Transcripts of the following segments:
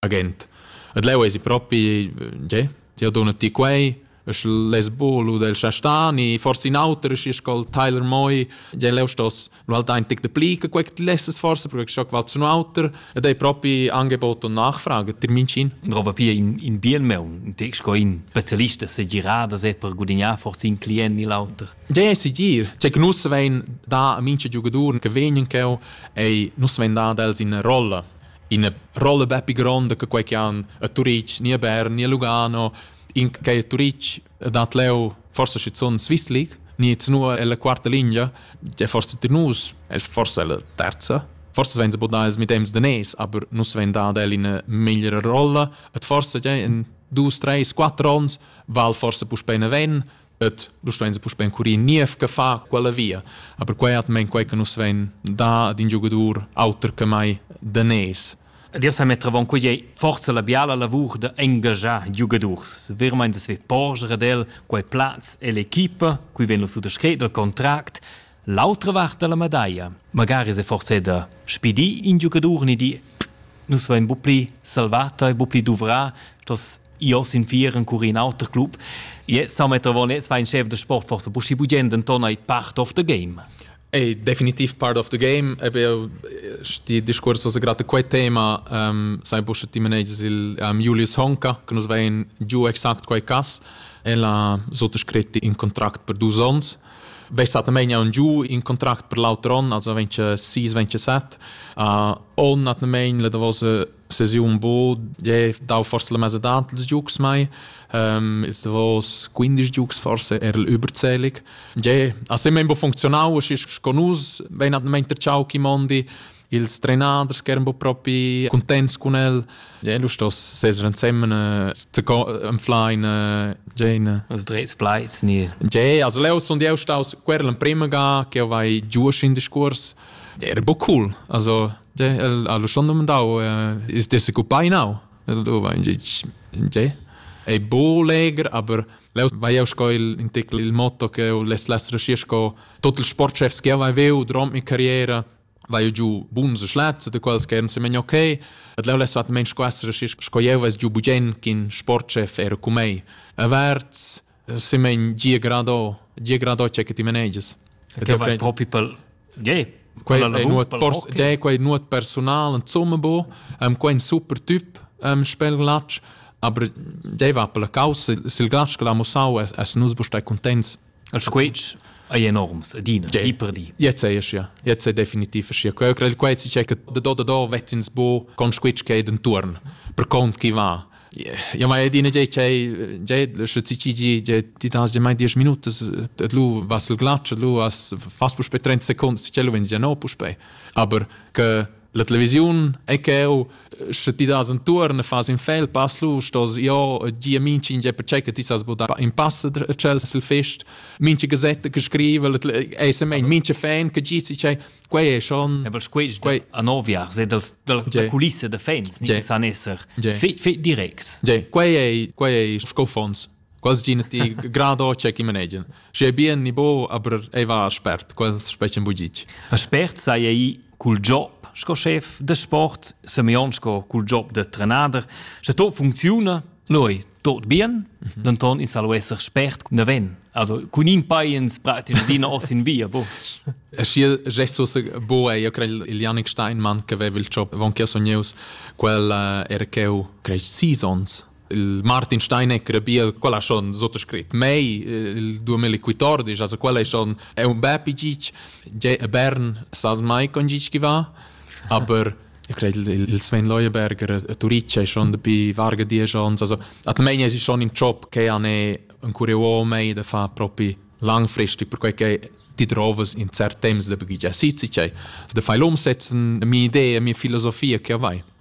agent. Et leu esi propi, tge, ti ha donat ti quei, es les bolo del Chastani, forse in auter ist col Tyler Moi, ja leu stos lu halt ein tic de pli che quec ti lesses forse perché scho qual zu auter ed ei propi Angebot und Nachfrage termincin. Und roba pia in in bien meun, text go in specialista se girada se per gudignare forse in client ni l'auter. Ja esi gir, che nus vein da a minche giugadur che vegnen cheu ei nus vein da dels in rolla ina rolla bepi gronda che quei che han a Turitg, ni a Bern, ni a Lugano, in che a Turitg dat leu forse schizun Swiss League, ni zunua ella quarta linea, è forse tir nus, è forse la terza, forse vein se bodar ils midems de nes, aber nus vein dad el in migliore rolla, et forse ja in dus, tres, quattro ons, val forse puspei ne ven, et du stein puspei encurir niev che fa quella via a per quei atmen quei che nus vein da ad in giogadur auter che mai danes Dir sa mettravon quei ei forza la biala lavur de engagiar giugadurs. Vermeint es ve porger ad el quei plaz e l'equipa, qui ven lo suttascret del contract, L'autra vart da la medaglia. Magari se forse da spidì in giocador ni di nus vein bu pli salvata e bu pli duvrà, dass io sin vieren cur in auter club. Je sa metter von jetzt war ein Chef der Sport forse buschi bugend Anton ei part of the game. È definitiv part of the game, eben sti discurs was gerade quei tema um, sai busche ti managers il um, Julius Honka che nos vein giù exakt quei cas e la sotto scritti in contract per dus ons Bessatamain un giu in contract per l'auter on, also 26, 27. Uh, on atamain la davos sesiun bo, je dau forse la mesa dat ils giugs mai, um, ils davos 15 giugs forse er überzählig. Je ha sempre bo funktionau, es ist con us, wenn atamain der ciao chi mondi, ils trenaders che eran propi contents cun el. Ja, lu stos seser ensemen äh, enflein äh, Jane. Els drets pleits nie. Ja, also leo son eu staus querl en prima ga che vai giusch in discurs. Ja, era bo cool. Also ja, el ha lu schon domandau äh, is der se cupai nau. El do va in ja. È bo leger, aber leo vai eu sco il in tecl il motto che les les resci sco tot il sportchefs che vai veu durant mi carriera vai giu buns schlazze de quals che se men okay et leu les vat men squassere sco jeu ves giu bugen kin sportchef er ku mei averts se men gie grado gie grado che ti manages che vai propi pel je quei è nuot pors je quei nuot personal en zumme bo am quein super typ am spel glatsch aber je va per la causa sil glatsch che la musau es es nus bo stai contents Il squetsch ei enorms adina, di per di. Jetzt sei es ja. Jetzt sei definitiv es ja. Quel crei quei si che da do da do vezzins bu con squetsch che intorn per cont chi va. Ja ma edina ge che ge sche ci ci ge ti das ge mai 10 minute et lu was el glatsch lu as fas pu spe 30 seconden si cello wenn ja no pu spe aber che La televisiun è cheu, sche ti das entuorn e fas in fel pass lu, stos jo gia minchin ge per che ti sas budar in pass a cel sil fest, minche gazette che scrive, è se mein minche fan che gi si che quei è schon. Ja, aber quei quei a novia se dals da kulisse de fans, ni san esser fe direct. Quei è quei è sco fons. quasi ch'ina ti gradocia chi manegian. Schi è bien ni bo, aber ei va a spert, quels specen bugic. A spert sei ei cul job sco chef de sport, Semyon sco cul job de trenader, sche to funcziuna, noi tot bien, mhm. denton in salo esser spert cun daven. Also cun in paiens pratin dina os in via, bo. E schi gestus bo e io crei il Janik Steinmann che aveva il job von che sogneus quel uh, er cheu crei seasons Il Martin Steinegger bia quella schon sottoscrit mei il 2014 also quella schon è un bel pigic je a Bern sas mai con gic va aber ich credo il Sven Leuenberger a Turice schon dabei varga die chance also at mei es schon im job che an è un curio mei da fa propi langfristig per quei che die Drovas in cert temps da bagiggia sitze da fai l'umsetzen mi idee mi filosofia che vai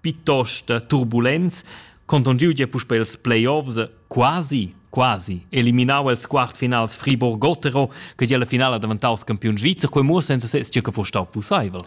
piuttost turbulents, contongiu gia puspei els playoffs, quasi, quasi eliminau els quartfinals Friburg-Gotero, che gia la finala daventaus campiun svizzer, quei muossa senza ses che fuss stau pusseivel.